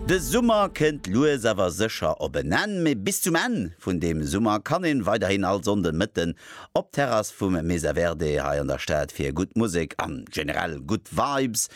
De Summer kënnt lues awer sécher op en Enn, mee bis zum Enn vun deem Summer kann een weiderhin all Sonnden Mëtten op d'Terrass vum Mesa Verde hei an der Stad fir gutt Musek an generell gutt Vibes.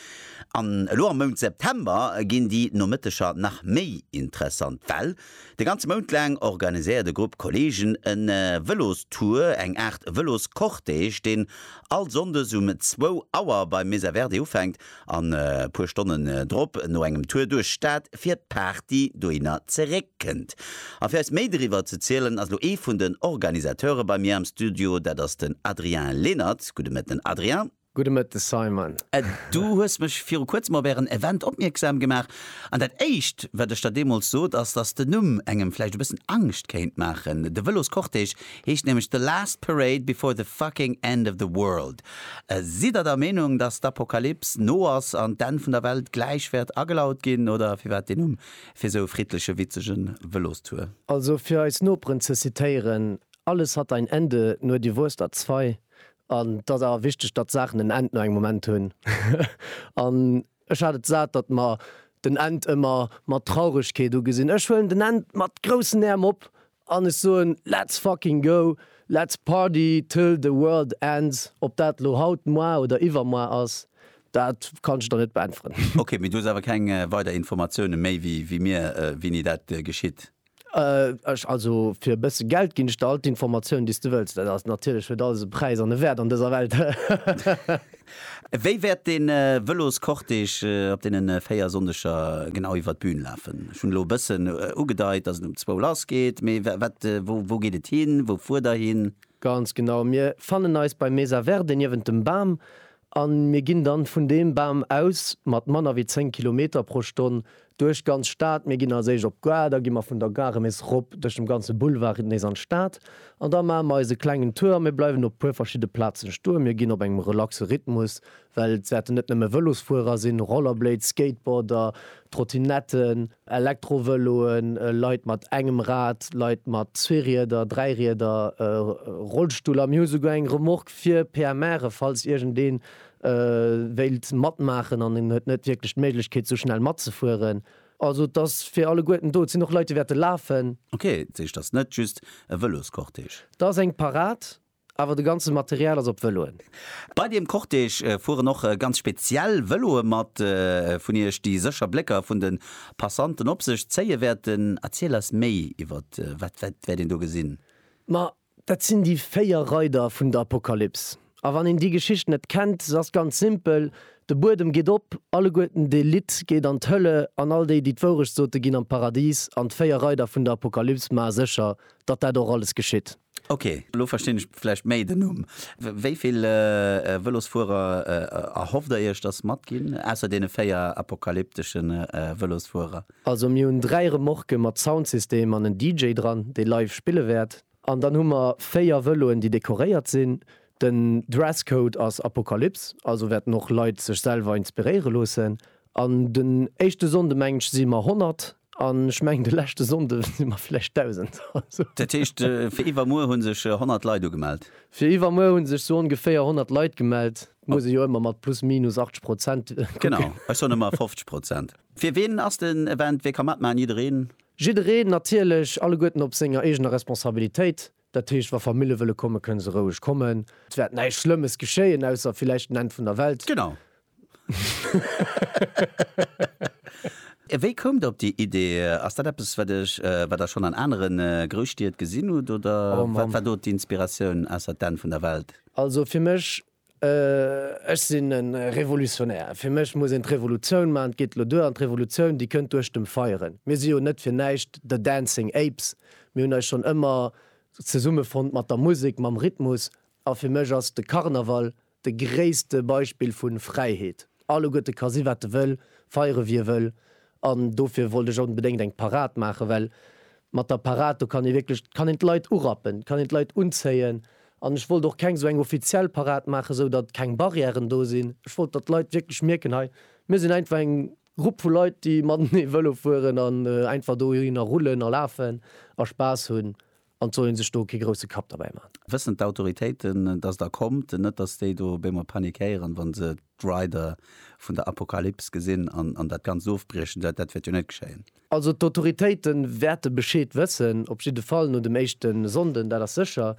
An elo am Mount September ginn déi Nomëtteger nach méi interessant, well de ganze Mount laang organiséiert e Grupp Kollegen en Vëlostour, eng Aart Vëloscortège, deen all Sonndes um zwou Auer beim Mesa Verde ufänkt An e puer Stonnen drop, no engem Tour duerch Stad, fir d'Party dohinner zeréck kënnt. A fir eis méi doriwwer ze zielen, ass elo ee vun den Organisateure bei mir am Studio, dat ass den Adrien Lenert. Gudde Mëtten Adrien. Gudde Mëtten Simon. Du hues mech viru kuerzem op ären Event opmierksam gemaach, an dat éischt wat ech der deemools sot ass, dass den Numm engem vläicht e bëssen Angscht kéint maachen. De Vëloscortège heescht nämlech The Last Parade Before the Fucking End of the World. Sidd der der Meenung, dass d'Apokalyps no ass an d'Enn vun der Welt gläich wäert agelaut ginn? Oder firwat deen Numm fir esou e friddleche, witzege Vëlostour? Also fir eis Noperen ze zitéieren, Alles hat ein Ende, nur die Wurst hat zwei. An et ass awer wichteg, datt Saachen en Enn no engem Moment hunn. An Ech hat et sat, datt mer den End ëmmer mat Trauregkeet ugesinn. Ech huelen den End mat groussen Ärm op an ech soen, Let's fucking go! Let's party till the world ends! Ob dat lo haut, moar oder iwwermoar ass, dat kann ech der net beäntweren. Ok, mee du hues awer keng weider Informatiounen méi wéi mir, wéini dat geschitt? Ech, also fir e bësse Geld ginn ech der all d'Informatiounen, déi s de wëlls. Dat ass natierlech, huet alles e Präis an e Wäert an dëser Welt. Wéi wäert de Vëloscortège op deenen 4 Sonndeger genau iwwert d'Bühn lafen? Ech hunn elo e bëssen ugedeit, dass en um zwou lass geet, mee wat, wou, wou geet et hin? Wou fuert der hin? Ganz genau, mir fannen eis bei Mesa Verde niewent dem Bam, A mir ginn dann vun deem Bam aus mat manner wéi 10 Kilometer pro Stonn duerch d'ganz Stad. Mir ginn als éischt op d'Gare, da gi mer vun der Gare nees rop duerch dem ganze Boulevard nees an d'Stad an da maache mer eise klengen Tour a mir bleiwen op e puer verschidde Plazen stoen. Mir ginn op engem relaxe Rhythmus, well et wäerten net nëmme Vëlosfuerer sinn, Rollerblades, Skateboarder, Trottinetten. Elektrovëloen, Leit mat engem Rad, Leit mat zwee Rieder, dräi Rieder, Rollstuller. Mir hu souguer eng Remorque fir PMRe falls iergendee wéilt matmaachen an en huet net wierklech d'Méiglechkeet esou schnell matzefueren. Also et ass fir alleguerten do. Et sinn och Leit déi wäerte lafen. Ok, d'Sicht ass net just e Vëloscortège. Et ass eng Parad, Awer de ganze Material ass op Vëloen. Bei deem Cortège fueren och ganz speziell Vëloe mat, vun Iech déi sécher Blécker vun de Passanten op sech zéie wäerten. Erziel eis méi iwwer wat wäert een do gesinn? Ma dat sinn déi véier Reider vun der Apokalyps. A wann een déi Geschicht net kennt, se ass ganz simpel, De Buedem geet op, alleguerten d'Elite geet an d'Hölle an all déi, déi d'Wourecht sote ginn an d'Paradis an d'véier Reider vun der Apokalyps maache sécher, datt dat och alles geschitt. Ok, elo verstinn ech vläicht méi den Numm. Wéi vill Vëlosfuerer erhofft der iech, datt matginn, ausser deene véier apokalyptesche Vëlosfuerer? Also mir hunn dräi Remorquen mat Soundsystem an en DJ dran, dee live spille wäert. An dann hu mer véier Vëloen, déi dekoréiert sinn. Den Dresscode ass Apokalyps, also wäerten och Leit sech selwer inspiréiere loossen. An den éischte Sonnde meng ech si mer 100, An ech mengen de leschte Sonnde si mer vläicht 1.000. Dat heescht, fir iwwermuer hu sech 100 Leit ugemellt? Fir iwwermuer hu sech sou ongeféier 100 Leit gemellt. Muss ee jo ëmmer mat plus minus 80 Prozent kucken. Genau, ech soen ëmmer 50 Prozent. Fir ween ass den Event? Wee ka matmaachen? Jiddereen? Jiddereen natierlech, alleguerten op senger eegener Responsabilitéit. Dat heescht, wa Famille wëlle kommen, kënne se roueg kommen. Et wäert näischt Schlëmmes geschéien, ausser villäicht den Enn vun der Welt. Genau. Wéi koumt Der op déi Idee? Ass dat eppes, wat Iech, wat Der schonn an anere Grousstied gesinn hutt, oder wat war do d'Inspiratioun, ausser d'Enn vun der Welt? Also fir mech Ech sinn e Revolutionär. Fir mech muss een d'Revolutioun maachen. Et geet elo duer. An d'Revolutioun, déi kënnt duerch dem Feieren. Mir si jo net fir näischt The Dancing Apes. Mir hunn eis schonn ëmmer zesummefonnt mat der Musek, mam Rhythmus. A fir mech ass de Karneval de gréisste Beispill vu Fräiheet. Alleguerte ka si wat e wëll, feiere wéi e wëll. An dofir wollt ech onbedéngt eng Parad maachen, well mat der Parad, do kann ee wierklech, kann een d'Leit urappen, kann een d'Leit unzéien. An ech wollt och keng esou eng offiziell Parad maachen, esou datt keng Barrièren do sinn. Ech wollt, datt d'Leit wierklech mierken, hei, mir sinn einfach eng Grupp vu Leit, déi matenee Vëlo fueren an einfach dohinner rullen a lafen a Spaass hunn. An et soll ee sech do kee grousse Kapp derbäi maachen. Wëssen d'Autoritéiten, dass der kommt? Net, dass déi do op eemol panikéieren, wa se d'Rider vun der Apokalyps gesinn an dat Ganzt ofbriechen? Dat wäert jo net geschéien. Also d'Autoritéite wäerte Bescheed wëssen, op jidde Fall no dem éischte Sonnden, dat ass sécher.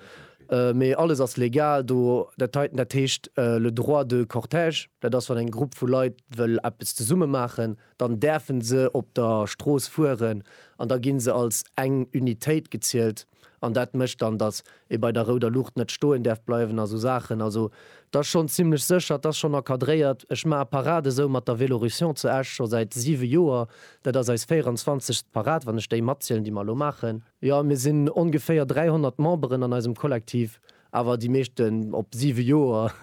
Mee alles ass legal do. Dat heiten, dat heescht le droit de cortège. Dat ass, wann eng Grupp vu Leit wëll eppes zesumme maachen. dann däerfen se op der Strooss fueren an da ginn se als eng Unitéit gezielt an dat mécht dann, dass ee bei der rouder Luucht net stoen däerf bleiwen a sou Saachen. Also et ass schonn zimmlech sécher, et ass schonn encadréiert. Ech maache Parade esou mat der Vélorution zu Esch scho säit siwe Joer. Dat ass eis 24. Parade, wann ech déi matzielen, déi mer elo maachen. Jo, mir sinn ongeféier 300 Memberen an eisem Kollektiv, Awer déi meeschten op 7 Joer,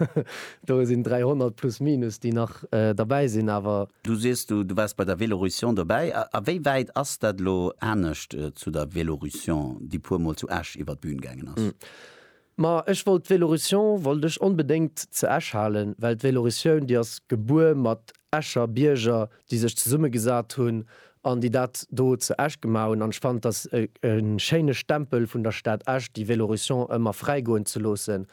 do sinn 300 plus minus, déi nach derbäi sinn. Awer. Du sees, du waars bei der Vélorution dobäi. A wéi wäit ass dat elo anescht zu der Vélorution, déi puer Mol zu Esch iwwer d'Bühn gaangen ass? Ma ech wollt d'Vélorution wollt ech onbedéngt ze Esch halen, well d'Vélorution, déi ass gebuer mat Escher Bierger, déi sech zesummegesat hunn an déi dat do zu Esch gemaach hunn. An ech fannen, et ass e schéine Stempel vun der Stad Esch, déi Vélorussion ëmmer fräi goen ze loossen.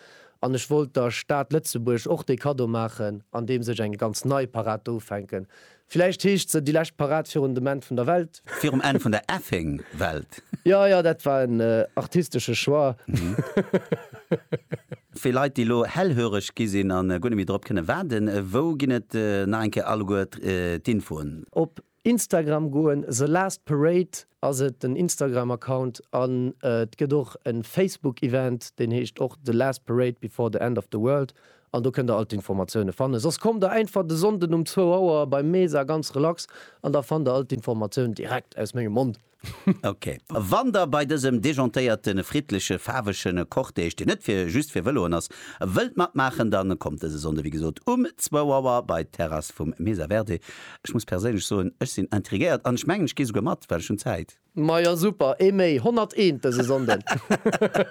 An ech wollt der Stad Lëtzebuerg och dee Kaddo maachen, andeems ech eng ganz nei Parad do ufänken. Villäicht heescht se déi lescht Parad virun dem Enn vun der Welt. Virum Enn vun der effing Welt. Jo, jo, dat war en artistesche Choix. Fir Leit, déi elo hellhöreg gi sinn a guer net méi drop kënne waarden, wou ginn et nach eng Kéier alleguer d'Infoen? Op Instagram goen, The Last Parade ass et den Instagram-Account, an et gëtt och e Facebook-Event, deen heescht och The Last Parade before the end of the world, an do kënnt der all d'Informatioune fannen. Soss kommt der einfach de Sonnden um zwou Auer beim Mesa ganz relax, an da fannt der all d'Informatioun direkt aus mengem Mond. Ok. Wann der bei dësem dejantéierten, friddlechen, faarwegen Cortège, deen net fir just fir Vëloen ass, wëllt matmaachen, dann kommt dëse Sonndë, wéi gesot, um zwou Auer bei d'Terrass vum Mesa Verde. Ech muss perséinlech soen, ech sinn intriguéiert an ech mengen, ech gee souguer mat, well ech hunn Zäit. Majo super, ee méi, 101 dëse Sonnden.